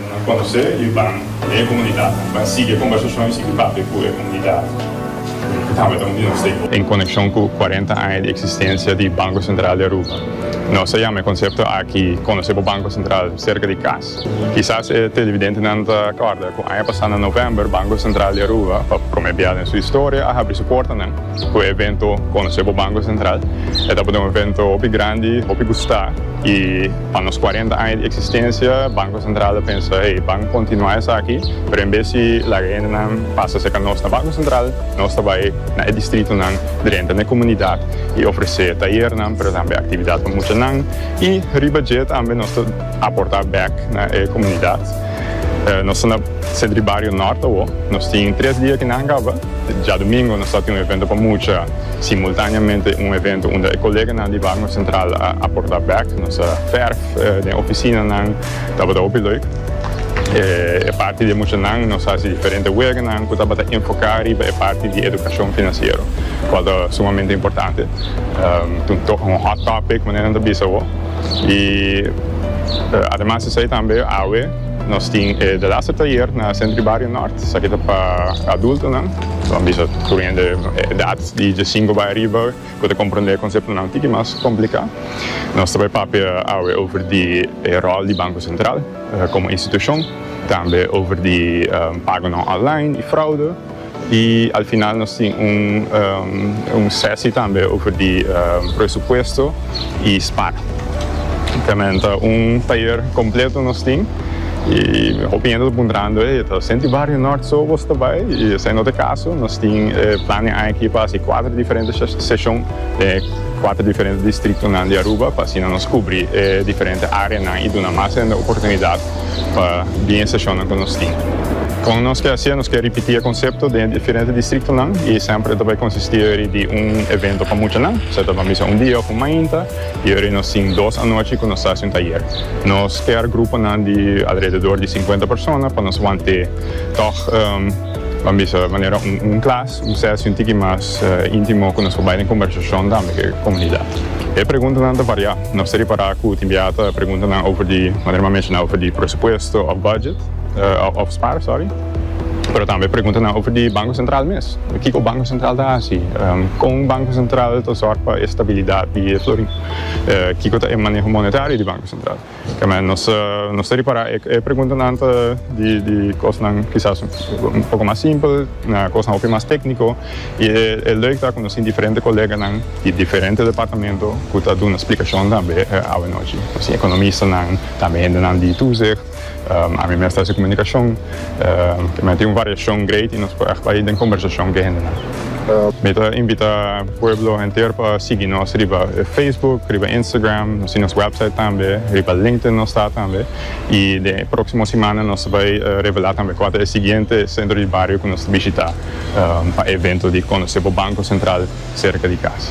Nos a conoce y ban den e comunidad. Nos a sigui e conversacion y sigui papia cu e comunidad cu tabata un di nos stakeholders. En conecion cu cuarenta aña di existencia di Banco Central di Aruba, nos a yama e concepto aki Conoce bo Banco Central cerca di cas. Kisas e televidentenan ta acorda cu aña pasa na november Banco Central di Aruba pa prome bia den su historia a habri su portanan cu e evento Conoce bo Banco Central. E tabata un evento hopi grandi, hopi gusta y. Pa nos cuarenta aña di existencia Banco Central a pensa hey ban continua esaki pero en bes di laga hendenan pasa cerca nos na Banco Central nos ta bay na e distritonan drenta n'e comunidad y ofrece tayernan pero tambe actividad pa muchanan y riba dje tambe nos ta aporta bek na e comunidad nos ta na Centro di Bario Norte awo nos tin tres dia ki nan caba. Djadumingo nos a tin un evento pa mucha, simultaneamente un evento unda e koleganan di Barnum Central a porta bek nos a ferf den oficinanan, tabata hopi leuk. E parti di e muchanan nos hasi diferente weganan cu tabata enfoca riba e parti di educacion financiero, cual ta sumamente importante. Un hot topic manera nan ta bisa awo. Y ademas di esey tambe awe. Nos tin e Delaster Tayer na Centro y Barrio Nort, esaki ta pa adultonan, lo han bisa tur un hende edad di diesinco bay ariba cu ta comprende e conceptonan un tiki mas complica. Nos ta bay papia awe over di e rol di Banco Central como institucion, tambe over di pagonan online y fraude. Y al final nos tin un sesi tambe over di presupuesto y spar. Temen ta un tayer completo nos tin y hopi hende ta puntrando, hey, ta senti Barrio Nort so bos ta bay? Y esai no ta e caso. Nos tin e plan den aki pa haci cuater diferente seshon den e cuater diferente distritonan di Aruba pa asina nos cubri e diferente areanan y duna mas hende oportunidad. pa bien estacionnan cu nos tin. Con nos ke hacié? Nos ke ripití e concepto den e diferente districtonan y semper e ta bay consistí ori di un evento pa muchanan, sea ta bay un dia of un mainta y ori nos tin dos anochi cu nos ta haci un tayer. Nos ker gruponan di alrededor di cincuenta persona pa nos wante tog bay bisa manera un klas, un sesi un tiki mas intimo cu nos por bay den conversacion tambe cu e comunidad. E preguntanan ta variá. Nos ta repará ku tin biaha ta pregunta nan over di manera mi a menshoná over di presupuesto òf budget òf spar sòri, pero tambe pregunta nan over di Banko Sentral mes. Kiko Banko Sentral ta hasi? Kon Banko Sentral ta sòrg pa e stabilidat di e florin? Kiko ta e maneho monetario di Banko Sentral? Kèmen nos nos ta repará e preguntanan ta di di kosnan kisas un poko mas simpel na kosnan hopi mas tékniko. I e lèuk ta konosí diferente koleganan di diferente departamento ku ta duna splikashon tambe awanochi. Nos tin ekonomistanan, tambe hendenan di Toezicht, ami mes ta hasi komunikashon. Kei manera tin un variashon greit i nos por ègt bai den kombersashon ku e hendenan. Mi ta invitá pueblo henter pa sigui nos riba Facebook, riba Instagram, nos tin nos wèpsait tambe, riba LinkedIn nos ta tambe. I den e próksimo simana nos ta bai revelá tambe kua ta e siguiente sentro di bario ku nos ta bishitá. pa evento di conoce bo Banco Central cerca di cas.